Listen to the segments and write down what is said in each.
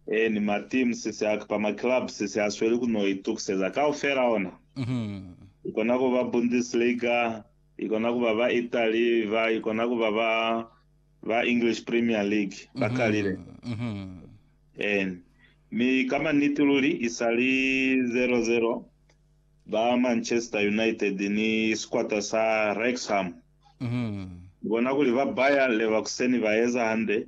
Ee, ni ma team sisi a kapa ma club sisi a sweli ku no itukiseza kaufela ona. I kona ku ba Bundesliga, i kona ku ba ba Italy ba, i kona ku ba ba, ba English Premier League. Ba kalile. Ee. Mi ka maniti luli, i sa li zero, zero, ba Manchester United ni sikwata sa Wrexham. Ni bona kuli ba Bayer Leverkusen ba eza hande.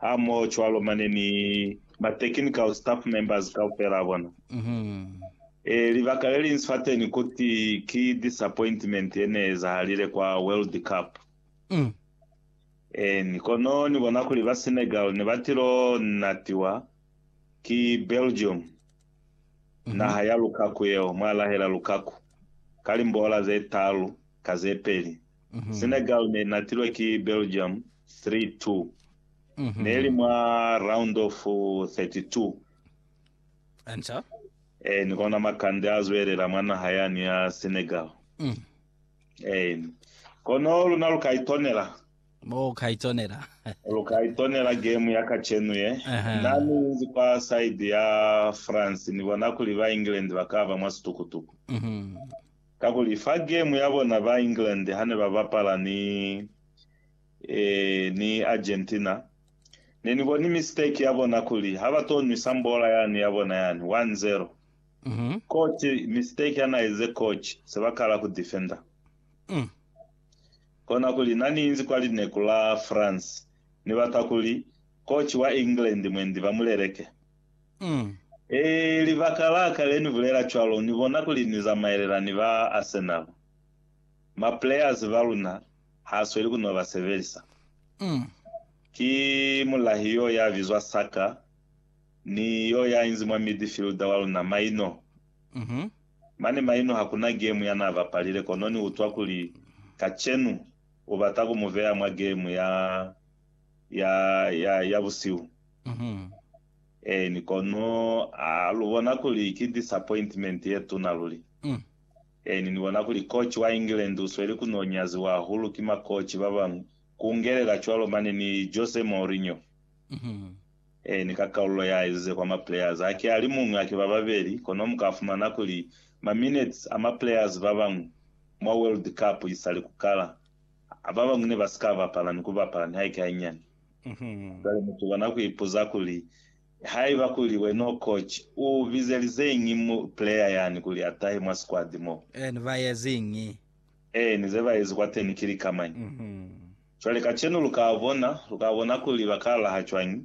hamohocwalo mane ni ma technical staff members kaufela a bona. E, libaka leliñsi fateni kuti ki disappointment yeneezahalile kwa World Cup. Eeni, kono Ni bona kuli ba Senegal nebatilo natiwa ki Belgium, naha ya Lukaku yeo, mwalahela Lukaku, ka limboola zetaalu ka zepeli. Senegal ne i natilwe ki Belgium 3-2. Ne li mwa round of 32. Answer. Ee, ni kona makande a zwelela mwa naha yani ya Senegal. Ee, ni. Kono luna lu ka itonela. Mo ka itonela. Lu ka itonela game ya kacenu ye. Aha. Na ni inzi kwa side ya France, ni bona kuli ba England ba ka ba mwa situkutuku. Kakuli fa game ya bona ba England hane ba bapala ni ni Argentina, ne ni boni mistake ya bona kuli ha ba to nwisa mbola yani ya bona yani, one zero. Coach, mistake ya na eze coach, se ba kala ku defender. Kona kuli na ni inzi kwa lineku la France, ni bata kuli coach wa England mwendi ba mu leleke. Mm. Ee, libaka la ka le ni bulela cwalo, ni bona kuli ni zamaelela ni ba Arsenal. Ma players ba luna ha sweli ku no ba sebelisa. Mm. Ki mulahi yo ya bizwa Saka, ni yo ya inzi mwa midfielder wa luna, Maino. Mm -hmm. Mane Maino ha kuna game ya na bapalile, kono ni utwa kuli kacenu u bata ku mu beya mwa game ya, ya, ya, ya busihu. Eeni, kono a lu bona kuli ki disappointment ye tuna luli? Eeni, ni bona kuli coach wa England u sweli ku n'o nyaziwa hahulu ki makoci ba bañwi, ku ngelela cwalo mane ni Jose Mourinho. Eeni, ka kaulo ya ezize kwa ma players, haki a li muñwi, haki ba babeli, kono mu ka fumana kuli ma minutes a ma players ba bañwi mwa World Cup isali ku kala, ba bañwi ne ba si ka bapala ni ku bapala nihaike hañani. Cwale mutu kona ku ipuza kuli, Haiba kuli wena u coach, u bizelizeñi mu player yani kuli a tahe mwa squad mo? Ni ba eziñi? Ee, ni ze ba ezi kwateni ki lika mañi? Cwale kacenu lu ka bona, lu ka bona kuli ba ka laha cwañi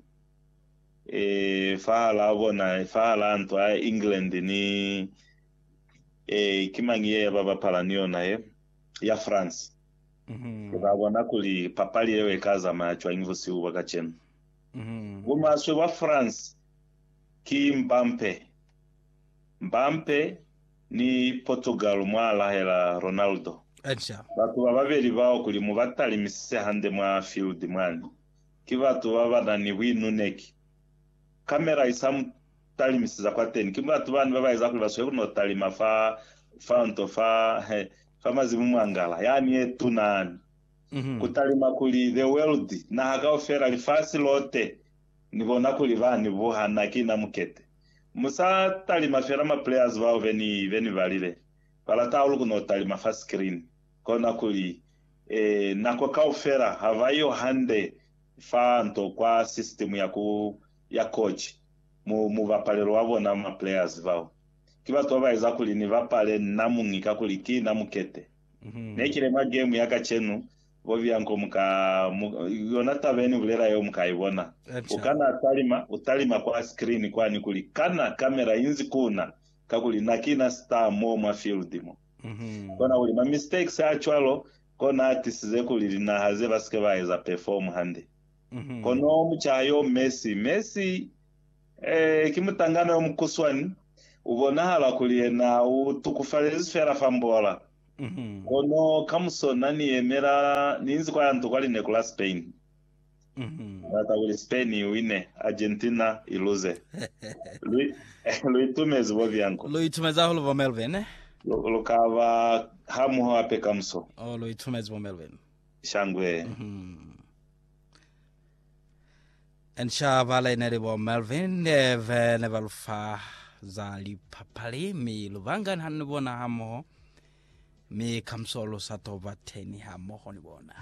ee, fahalaa bona, fahalaa ntwa ya England ni, ee, ki mañi ye ba bapala ni yona ye, ya France. Uka bona kuli papali yeo ika zamaya cwañi busihu bwa kacenu. Bumaswe bwa France ki Mbampe. Mbampe ni Portugal mwa lahela Ronaldo. Batu bababeli bao kuli mu ba talimisise hande mwa field mwani, ki batu babana ni buinuneki. Camera isa mu talimiseza kwateni. Ki batu bani baba eza kuli ba sweli kuno talima fa, fa nto fa, he. fa mazimu mwa ngala yani ye tuna ni ku talima kuli, The world, naha kaufela, lifasi lote, ni bona kuli ba ni buha na ki na mukete. Mu sa talima fela ma players bao be ni, be ni balile. Ba lata hahulu ku no talima fa screen. Kona kuli, eh, nako kaufela ha ba yo hande fa nto kwa system ya ku, ya coach, mu, mubapalelo wa bona ma players bao. Ki batu babaeza kuli ni bapale na muñi kakuli ki na mukete. Ne kile mwa game ya kacenu, bo Bianco mu ka, mu, yona taba yeni bulela yeo mu ka ibona. U kana talima, u talima kwa screen kwani kuli, Kana camera inzi ku na? Kakuli na ki na star mo mwa field mo. Kona kuli ma mistakes a cwalo kona a tisize kuli linaha ze ba sike ba eza perform hande. Kono mucaha yo Messi, Messi Ee, ki mutangana yo mukuswani, u bonahala kuli yena u tukufalezi fela fa mbola. Kono kamuso na ni yemela, ni inzi kwa ya nto kwa lineku la Spain. Ni bata kuli Spain i wine, Argentina i luze. Lu, lu itumezi bo byanko. Lu itumezi hahulu bo Melvin. Lu, lu ka ba hamoho hape kamuso. Oh, lu itumezi bo Melvin. Shangwe. And shaba laine li bo Melvin Ndeve ne ba lufa za lipapali mi lubangani hanu ni bona hamoho mi kamuso lu sa toba teni hamoho ni bona.